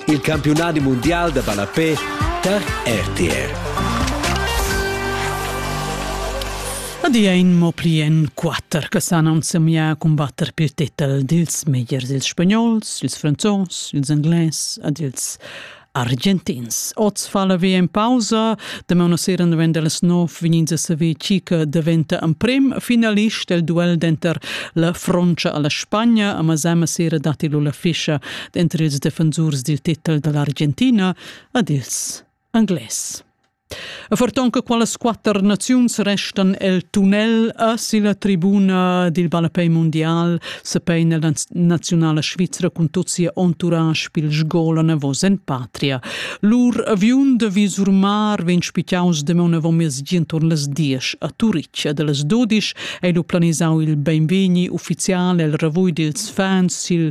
il campiunadi mundial da ballapè tar RTR. Adia in mo pli en quatter che san ensemiar a combatter per titel dils megliers ils spagnols, ils franzos, ils englais ed ils argentins. Oz fa la VM pausa, demaun sera novembre las 9 vegnin a saver chi che daventa en prim finalist el duel denter la Frontscha alla Spagna, a Masama sera datti lu la fischa denter ils defensurs dil titel dall'Argentina ad ils Anglais. E forton che qualas quatter naziuns restan el tunnel a silla tribuna dil ballapei mundial se peina la nazionala svizra cun tot sia entourage pil sgolan avos en patria. Lur aviun de Visurmar vegn spitaus demon avon mes gientor las diesch a Turic ed las dodisch ei lu planisau il beinvegni ufficial el ravui dils fans sil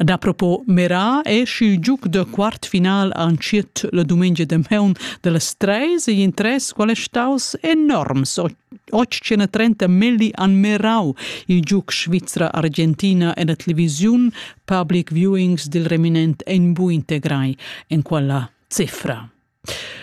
Dapropo Merat è schi giuc da quartfinal antschiet la dumengia de meun dellas treis e in tres qual è staus enorms 830 milli an Merau, il giuc svizra-argentina en la televisiun Public Viewings dil reminent en bu integrai en quella cifra.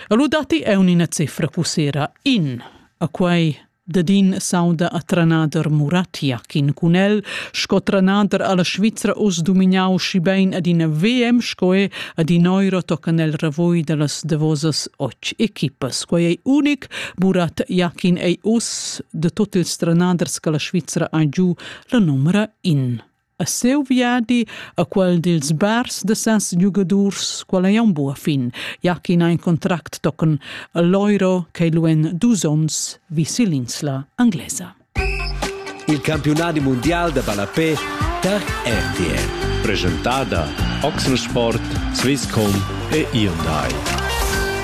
Lu datti eu ina cifra cussera in. A quai dadin s'auda a trenader Muratiakin cun el, sco trenader alla Svizra uss dumignau schibein ad ina VM sco è ad in euro toccan el ravoi dallas davosas och equipas. Quai ei unic, Murat Jakin ei uss de tot ils trenaders che la Svizra ha giu la numera in. A seu viadi a quel dils bars de sens giugadurs, quel ei aunc buca fin, ja ch'in ha in contract tochen all'euro ch'ei lu en dus onns vi sill'insla anglesa. Il campiunadi mundial de ballapé per RTL. Presentada Oxensport, Swisscom e Hyundai.